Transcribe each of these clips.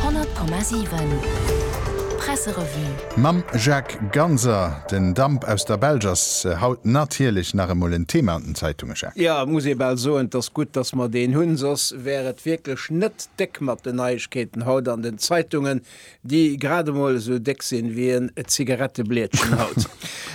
100,7 Presserevue. Mam Jacques Ganser. Den Damp aus der Belsch ass haut natierlech nach emol en Thema an den Zeitunge, Jacques. Jo, muss ee bal soen. Et ass gutt, dass mer deen hunn, soss wär et wierklech net déck mat den Neiegkeeten haut an den Zeitungen. Déi grad emol esou déck sinn, wéi en Zigaretteblietchen haut.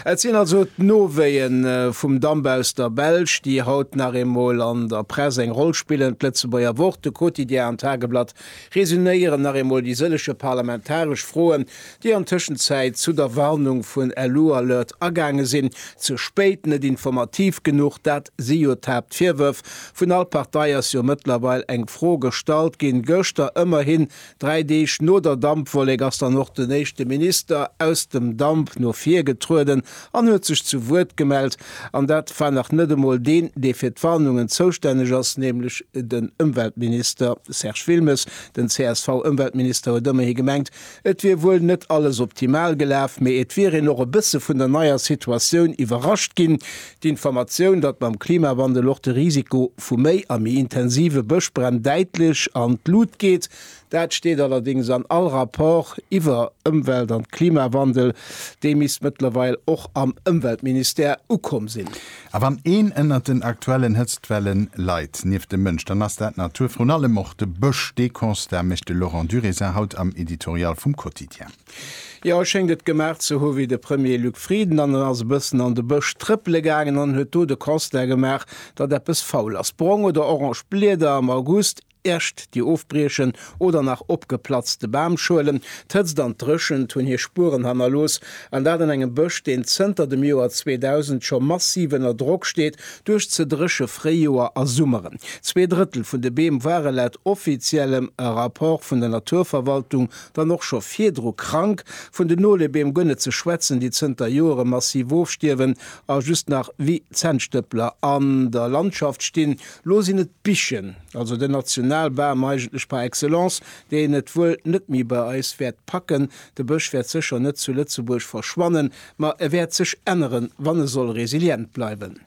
Et sinn also d'Nowéien vum Damp aus der Belsch, déi haut nach eemol an der Press eng Roll spillen. D'Lëtzebuerger Wort, de Quotidien an d'Tageblatt resuméieren nach eemol déi sëlleche parlamentaresch Froen, déi an Tëschenzäit zu der Warnung vun Elualert agaange sinn, ze spéit, net informativ genuch. Dat si jo d'Haaptvirwërf. Vun all Partei ass jo mëttlerweil eng Fro gestallt ginn, gëschter ëmmerhin Dräi Deeg no der Dampwollek ass dann och den éischte Minister aus dem Damp no vir getrueden an huet sech zu Wuert gemellt. An dat war nach net emol deen, dee fir d'Warnungen zoustänneg ass, nämlech den Ëmweltminister Serge Wilmes. Den CSV-Ëmweltminister huet ëmmerhi gemengt, et wier wuel net alles optimal gelaf, mee et wier een och e bësse vun der neier Situatioun iwwerrascht ginn. D'Informatioun, datt mam Klimawandel och de Risiko vu méi a méi intensive Bëschbränn däitlech an d'Lut geet, dat steet allerdéngs an all Rapport iwwer Ëmwelt an Klimawandel. Déi misst mëttlerweil och am Ëmweltministère ukomm sinn. A wann een ënnert den aktuellen Hëtztwelle leit, nieft dem Mënsch, dann ass dat d'Natur, vrun allem och de Bësch. Dee Constat mécht de Laurent Durézin haut am Editorial vum Quotidien. Jo, e schéngt et gemaach ze hu wéi de Premier Luc Frieden an en ass e bëssen an de Bësch trëppele gaangen an huet do de Constat gemaach, datt eppes faul ass. Brong oder orange Blieder am August, Äscht, déi ofbriechen oder nach opgeplatzte Bamschuelen. D'Hëtzt an d'Dréchent hunn hir Spueren hannerlooss, an dat an engem Bësch, deen zënter dem Joer 2000 scho massiv ënner Drock steet duerch ze dréche Fréijoer a Summeren. Zwee Drëttel vun de Beem ware laut offiziellem Rapport vun der Naturverwaltung dann och scho virdru krank, vun den Nolebeem guer net ze schwätzen, déi zënter Joere massiv ofstierwen a just nach wéi Zännstëppler an der Landschaft stinn. Lo sinn et d'Bichen, also den Nationalbam eigentlech par excellence, deen et wuel net méi bei eis wäert packen. De Bësch wäert sécher net zu Lëtzebuerg verschwannen, Ma e wäert sech änneren, wann e soll resilient bleiwen.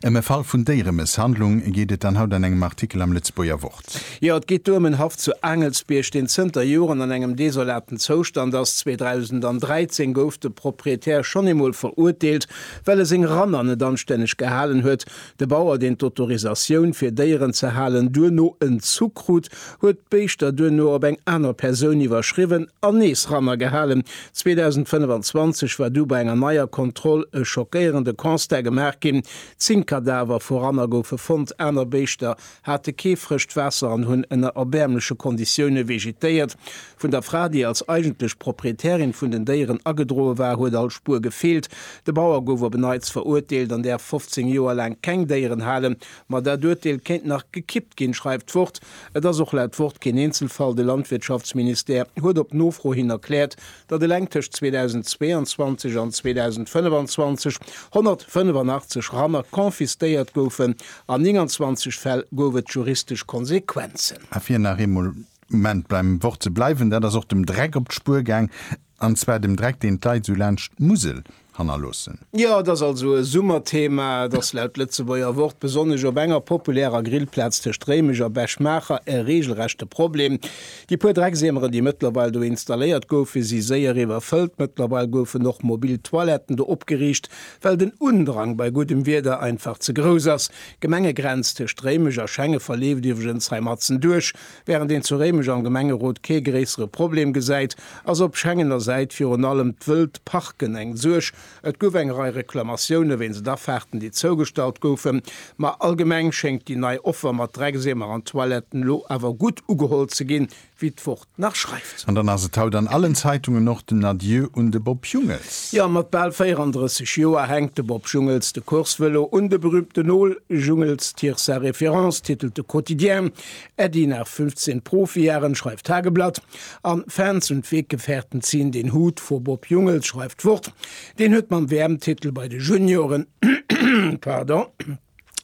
Ëm e Fall vun Déieremësshandlung geet et dann haut an engem Artikel am Lëtzebuerger Wort. Jo, et geet do ëm en Haff zu Aangelsbierg, deen zënter Joren an engem desolaten Zoustand ass. 2013 gouf de Proprietär schonn eemol verurteelt, well e seng Ranner net anstänneg gehalen huet. De Bauer, deen d'Autorisatioun, fir Déieren ze halen, duerno entzu krut, huet d'Béischter duerno op eng aner Persoun iwwerschriwwen an nees ranner gehalen. 2025 war du bei enger neier Kontroll e schockéierende Constat gemaach ginn, Zéng Kadaver vu Ranner goufe fonnt, aner Béischter hate kee frëscht Waasser an hunn ënner erbäermleche Konditioune vegetéiert. Vun der Fra, déi als eigentlech Proprietärin vun den Déieren agedroe war, huet all Spuer gefeelt. De Bauer gouf op e Neits verurteelt an däerf 15 Joer laang keng Déieren halen. Ma dat Urteel kéint nach gekippt ginn, schreift d'Wort. Et ass och laut Wort keen Eenzelfall. De Landwirtschaftsministère huet op Nofro hin erkläert, datt eleng tëscht 2022 an 2025 185 Ranner confisquéiert goufen, an 29 Fäll gouf et juristesch Konsequenzen. A fir nach eemol Moment beim Wort ze bleiwen, dat ass och dem Dreck op d'Spuer gaang, an zwar dem Dreck, deen d'Leit esou laanscht d'Musel hannerloossen. Jo, et ass also e Summerthema, dass laut Lëtzebuerger Wort besonnesch op enger populärer Grillplaz tëscht Réimech a Bech-Maacher e reegelrechte Problem. Déi puer Drecksiemeren, déi mëttlerweil do installéiert goufen, si séier iwwerfëllt. Mëttlerweil goufen och mobil Toiletten do opgeriicht, well den Undrang bei guddem Wieder einfach ze grouss ass. D'Gemengegrenz tëscht Réimech a Schenge verleeft iwwregens hei matzen duerch. Während een zu Réimech am Gemengerot kee gréissere Problem gesäit, ass op Schengener Säit virun allem d'wëllt Parken eng Suerg. Et gouf eng Rei Reklamatioune wéinst Afaarten, déi zougestallt goufen. Ma allgemeng schéngt déi nei Offer mat Dreckseemer an Toiletten elo awer gutt ugeholl ze ginn, wéi d'Wort nach schreift. An dann ass et haut an allen Zeitungen och den Adieu un de Bob Jungels. Jo, mat bal 34 Joer hänkt de Bob Jungels de Coursevëlo un de berüümten Nol. Jungels tire sa référence, titelt de Quotidien. Äddi nach 15 Profijahren schreift Tageblatt an Fans und Weggefährten ziehen den Hut vor Bob Jungels schreift d'Wort, deen huet mam WM-Titel bei de Junioren pardon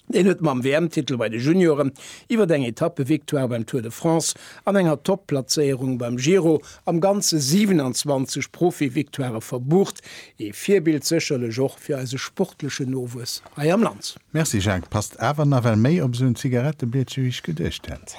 deen huet mam WM-Titel bei de Junioren iwwert eng Etappe-Victoire beim Tour de France an enger Top-Platzéierung beim Giro am Ganze 27 Profi-Victoirë verbucht, ee Virbild sécherlech och fir eise sportlechen Nowuess hei am Land. Merci Jacques, passt awer nawell méi op esou en Zigarettebliedche wéi ech geduecht hätt.